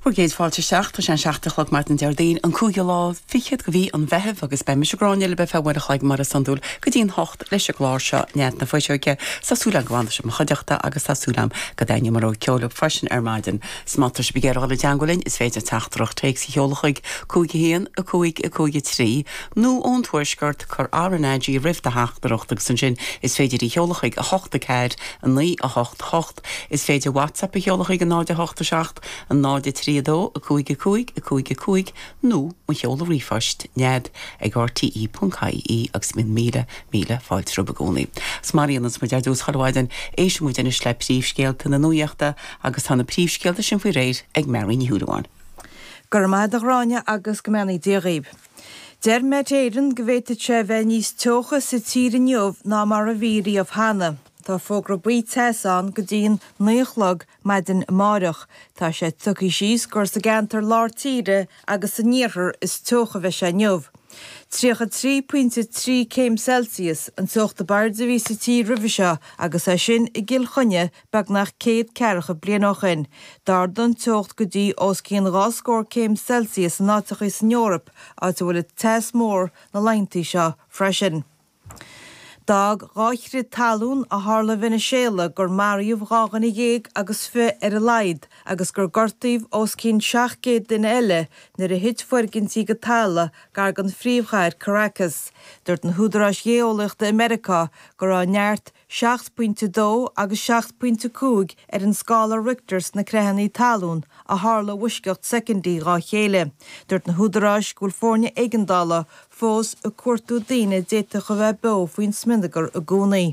Bhur gcéad fáilte isteach. Tá sé an seacht a chlog maidin an Déardaoin, an cúigiú lá fichead de mhí an Mheithimh agus beidh mise, Gráinne, libh ar feadh uair a chloig mar is iondúil go dtí an hocht leis an gclár seo Nead na Fuiseoige. Tá súil agam go bhfanfaidh sibh i mo chuideachta agus tá súil agam go dtaitneoidh mo rogha ceoil libh freisin ar maidin. So má tá sibh ag iarraidh dul i dteangmháil linn is féidir teachtaireacht téacs a sheoladh chuig 51553 nó ón Tuaisceart, cuir RnaG roimh do theachtaireacht agus ansin is féidir í a sheoladh chuig 81498. Is féidir WhatsApp a sheoladh chuig 087 03 2 5 5 5 5 nó mo sheoladh ríomhphoist, Nead ag rte.ie agus bíonn míle, míle fáilte romhat i gcónaí. Agus mar a dhéananns muid ar dtús chuile mhaidin, éisteann muid anois le príomhscéalta na Nuaíochta agus tá na príomhscéalta sin faoi réir ag Mary Ní Shúilleabháin. Go raibh maith agat, a Ghráinne agus go mbeannaí Dia dhaoibh. Deir Met Éireann go bhféadfadh sé a bheith níos teocha sa tír inniu ná mar a bhí riamh cheana. Tá fógra buí teasa ann go dtí an 9 a chlog maidin amáireach. Tá sé tugtha síos gur sa gceantar lár tíre agus san iarthar is teocha a bheidh sé inniu. 33.3 céim Celsius an teocht ab airde a bhí sa tír roimhe seo agus é sin i gCill Chainnigh beagnach céad ceathracha bliain ó shin. D'ardaigh an teocht go dtí os cionn dhá scór céim Celsius in áiteachaí san Eoraip, áit a bhfuil teas mór na laethanta seo freisin. D'fhág dhá chrith talún a tharla i Veiniséala gur maraíodh dhá dhuine dhéag agus fiche ar a laghad agus gur gortaíodh os cionn 700 duine eile nuair a thit foirgintí go talamh gar den phríomhchathair Caracas. Dúirt na húdaráis gheolaíochta i Meiriceá go raibh neart seacht bpointe dó agus seacht bpointe cúig ar an scála Richter sna creathannaí talún a tharla i bhfoisceacht soicindí dhá chéile. Dúirt na húdaráis go bhfuil foirne éigeandála fós ag cuartú daoine a d'fhéadfadh a bheith beo faoin smionagar i gcónaí.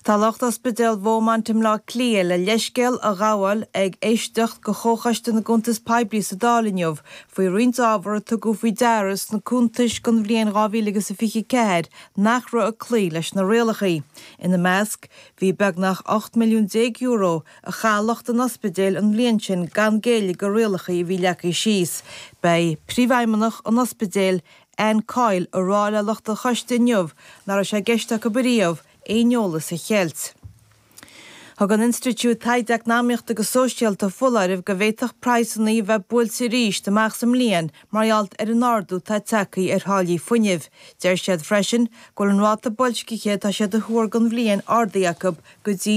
Tá lucht ospidéal Bheaumont i mBleá Cliath le leithscéal a ghabháil ag éisteacht de Chomhchoiste na gCuntas Poiblí sa Dáil inniu faoi roinnt ábhar a tugadh faoi deara sna cuntais don bhliain 2024 nach raibh ag cloí leis na rialachaí. Ina measc, bhí beagnach €18 milliún a chaith lucht an ospidéil an bhliain sin gan géilleadh do rialachaí a bhí leagthaí síos. Beidh Príomhfheidhmeannach an ospidéil, Anne Coyle, a rá le lucht an choiste inniu nach raibh sé i gceist acub ariamh aon eolas a cheilt. Thug an Institiúid Taighde Eacnamaíochta agus Sóisialta foláireamh go bhféadfadh praghsannaí a bheith buailte arís amach sa mbliain mar gheall ar an ardú atá tagthaí ar tháillí fuinnimh. Deir siad freisin go bhfuil an ráta boilscithe atá siad a thuar don bhliain ardaithe acub go dtí